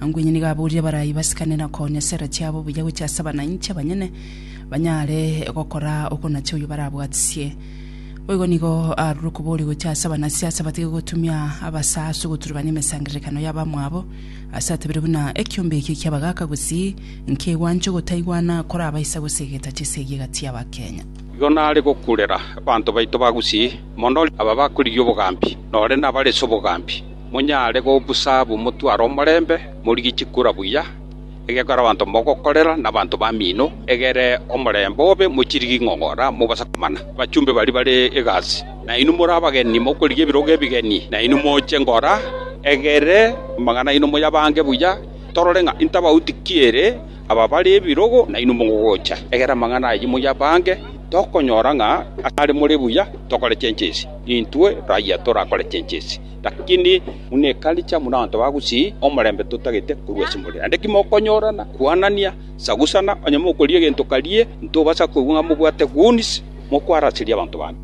Anga onye nigo aborire abarai basikane na konya chera chiabo buya gochia ase abananchi abanyene, banyare gokora okonacha oyio barabwatisie. Boigo nigo arure okoboria gochia ase abanasiasa batige gotumia abasa ase ogoturebania emesangererekano y'abamwabo, ase atabire buna ekiombe eke ki'abagaka gusii nkegwanche ogotaigwana korabaisa gose egeta chisegi egati y'Abakenya. Igo nare gokurera abanto baito ba gusii mono aba bakorigia obogambi, nore nabare ase obogambi. monyare gobusa ab'omotwaro omorembe, morigie chikura buya, egekore abanto mogokorera, na abanto bamino, egere omorembe obe, mochirigie ing'ong'ora, mobase komana abachumbe baria bare egasi. Nainwe more abageni, mokorigia ebirogo ebigeni, nainwe moche ngora, egere amang'ana aino moyabange buya, torore ng'a intabauti ki ere aba bare ebirogo nainwe mogocha. Egere amang'ana ayio moyabange, tokonyora ng'a asare more buya tokore chenchesi, intwe raia torakore chenchesi. Lakini buna ekaricha buna abanto ba gusii omorembe totagete korwa ase more. Naende ki mokonyorana, kwanania, sagusana, onye mokorigia egento karie, ntobasa koigwa ng'a mobwate goons, mokwaraseria abanto bande.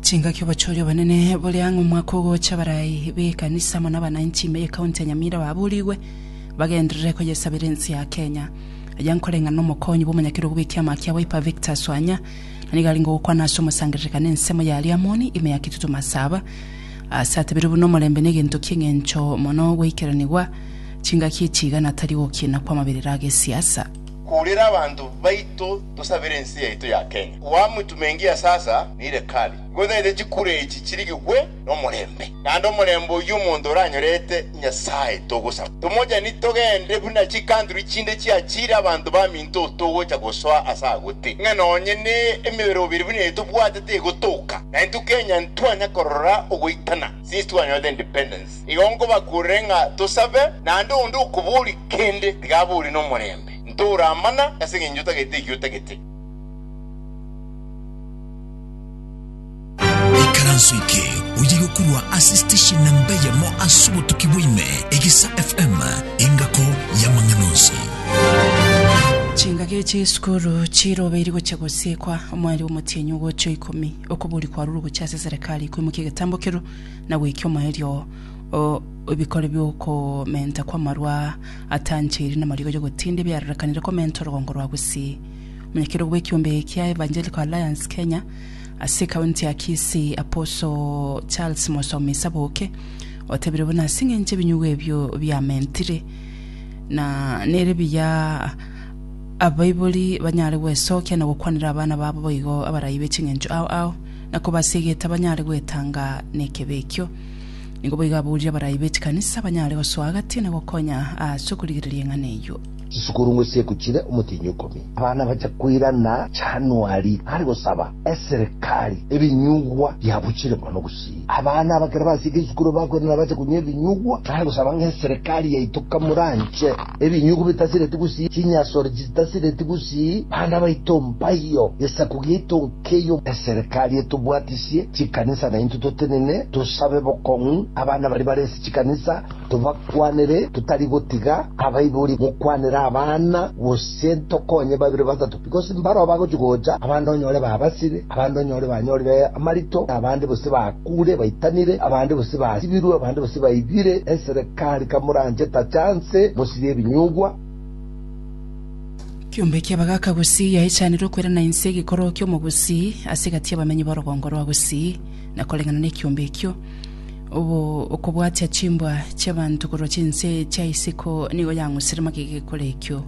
Chingaki obochori obonene bore ang'e omwaka ogocha abarai b'ekanisa amo nabananchi ime y'ekaunti ya Nyamira baburigwe bagenderere koyesabera ense ya Kenya. Aya nkoreng'ana nomokonyi bw'omonyakerogo bw'ekiama kia Wiper Victor Swanya Na nigo arenge gokwana ase omosangererekano ensemo ya Ariamoni, ime ya Kitutu Masaba, aase atebeirwe buna omorembe negento ki'engencho mono goikeranigwa chingaki echiigana tari gokiina kw'amaberero agesiasa. Kurira abanto baito tosabere ense yaito ya Kenya. Wamwitu mengi ya sasa nire kari. Gotaete chikura echi chirigigwe. nomorembe. Naende omorembe oyio omonto oranyorete Nyasae togosaba, tomochani togende buna chikantri chinde chiachiire abanto baminto togocha gosoa ase agotee, ng'a nonye ne emebere obere buna eye tobwatete egotoka, na intwe Kenya ntitwanya korora ogoitana since twanyorete independence. Igo nkobakurere ng'a tosabe, naende onde okobori kende tiga abori nomorembe, ntoura amana ase engencho otagete ekiotagete. Ikaranso eke oye gokorwa ase station namba eyemo ase obotuki bwaime, Egesa FM, engako y'amang'ana onsi. Chingaki echi esukuru chirobeiri gochia gosikwa omweri omotienyi ogocha oikomi okobori kwarurwe gochia ase serikali koimokia egetambo kerwo na goikia omoerio o ebikori biokomenta kwamarwa atancheiri namarigo yogotinda ebiarorekanire komenta orogongo rwa gusii. Omonyakerwa bwekiombe ekia Evangelical Alliance Kenya Ase ekaunti ya Kisii, Apostle Charles Mosomi Saboke otebire buna ase engencho ebinyugwa ebio biamentire, na nere biya abaibori banyare gwesokia na gokwanera abana babo boigo abarai be chingencho ao ao, na kobasiegeta banyare gwetanga nekebe ekio. Nigo boigo aburire abarai be chikanisa banyare gosoa agati na gokonya ase okorigereria eng'ana eyio. Chisukuru ngosieku chire omotienyi okomi. Abana bacha koirana Januari are gosaba eserikari ebinyugwa biabuchire mono gusii. Abana aba kera basieke chisukuru bakoirana bache konywa ebinyugwa are gosaba ng'a eserikari yaito kamoranche ebinyugwa bitasireti gusii, chinyasore chitasireti gusii, bana baito mbayo, gesaku giaito nkeyo. Eserikari etobwatisie chikanisa naintwe totenene tosabe bokong'u abana baria bare ase chikanisa. Tobakwanere totari gotiga abaibori gokwanera abana, gose ntokonye babere batato, because mbarao bagochia gocha, abande onyore babasire, abande onyore banyorire amarito, na abande gose bakuure baitanire, abande gose basibirwe, abande gose baibire. Eserekari kamoranche tachanse mosirie ebinyugwa. Kiombe ki'abagaaka gusii yaechaanire okwerana inse egekoroo ki'omo gusii ase egati y'abamenyi b'orogongo rwa gusii, na koreng'ana nekiombe ekio. Obo okobwatia chimbwa chi'abanto korwa chinse chia isiko nigo yang'usire magega ekore ekio.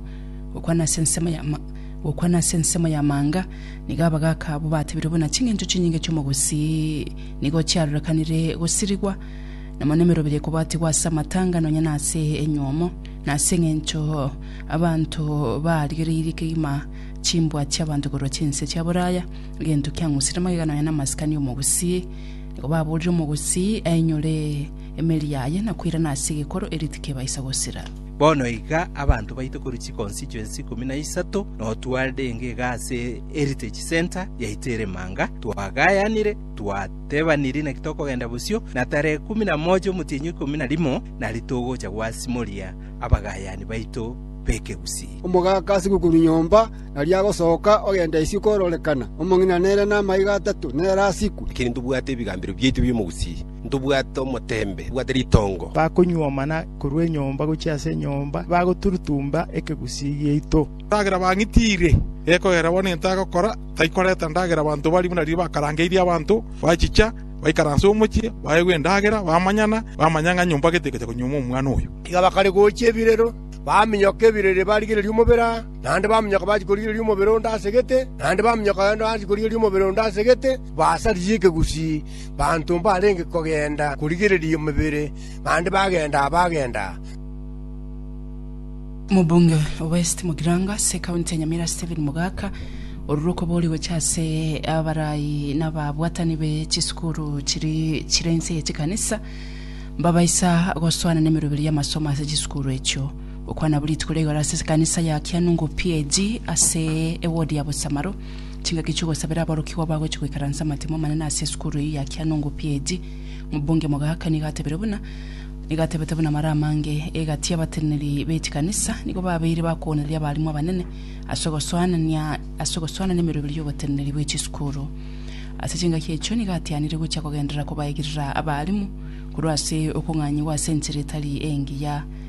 Gokwana ase ensemo ya ma- gokwana ase ensemo y'amanga, nigo abagaaka abwo batebire buna ching'encho chinyinge chi'omogusii nigo chiarorekanire gosirigwa, na mono emerobera ekobatigwa ase amatanga nonya na ase enyuomo, na ase eng'encho abanto barigereirie kegima chimbwa chi'abanto korwa chinse chia boraya, egento kiang'usire magega nonya na masikani y'omogusii, Kobaboorire omogusii ainyore emeri yaye na koirana ase egekoro erio tikebaisa gosira. Bono iga abanto baito korwa chiconstituency ikomi na isato notwarire engega ase Heritage Centre yaito ere Manga, twagayanire, twatebaniri naki tokogenda bosio, na tarehe ikomi na moja omotienyi ikomi na rimo nari togocha gwasimoria abagayani baito b'ekegusii. Omogaka ase gokuru nyomba aria agosoka ogenda isiko kororekana, omong'ina nere namaiga atato nere asiku. Lakini ntobwate ebigambero biaito bi'omogusii, ntobwate omoteembe, ntobwate ritongo. Bakonyuoma na korwa enyomba gochia ase enyomba, bagoturutumba ekegusii giaito. Endagera bang'itiire, gekogera bono egento agokora, taikoreta ndagera abanto baria buna riria bakarangeirie abanto, bachicha, baikaransa omochie, baegwa endagera, bamanyana, bamanya ng'a nyomba gete egocha konyuoma omwana oyo. Iga bakaregochia ebirero, baminyoka ebirero ebarigereria omobere aa. naende baminyoka bachia korigereria omobere onde ase egete, naende baminyoka bende bachia korigereria omobere onde ase egete, basaririe ekegusii baanto mbarenge kogenda korigereria omobere, naende bagenda bagenda. Omobunge o West Mugirango ase ekaunti ya Nyamira Stephen Mogaka, orure okobori gocha ase abarai na ababwatani be chisukuru chiri chire inse ye chikanisa, mbabaisa goswana nemeroberi y'amasomo ase chisukuru echio. Gokwana buri rituko ria igoro ase ekanisa ya Kianungu PAG ase ewodi ya Bosamaro. Chingaki chi'ogosabera aborokigwa bagochia goikaransa amatemo amanene ase esukuru eyio ya Kianungu PAG. Omobunge Mogaka nigo atebire buna nigo atebete buna mara amange egati y'abateneneri be chikanisa nigo babeire bakoonereria abalimu abanene ase ogosoanania ase ogosoanania emeroberi y'oboteneneri bwe chisukuru. Ase chingaki echio nigo atianire gochia kogenderera kobaigirera abalimu korwa ase okong'anyigwa ase enchera etari engiya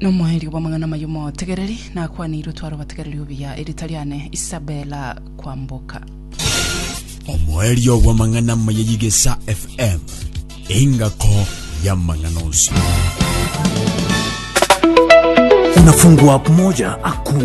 Nomoerio bw'amang'ana amaya omotegereri nakwaneirwe tware obategereri obuya erita riane Isabella Kwamboka. Omoerio bw'amang'ana amaya y'Igesa FM, engako y'amang'ana onsi. Unafungua moja hakuna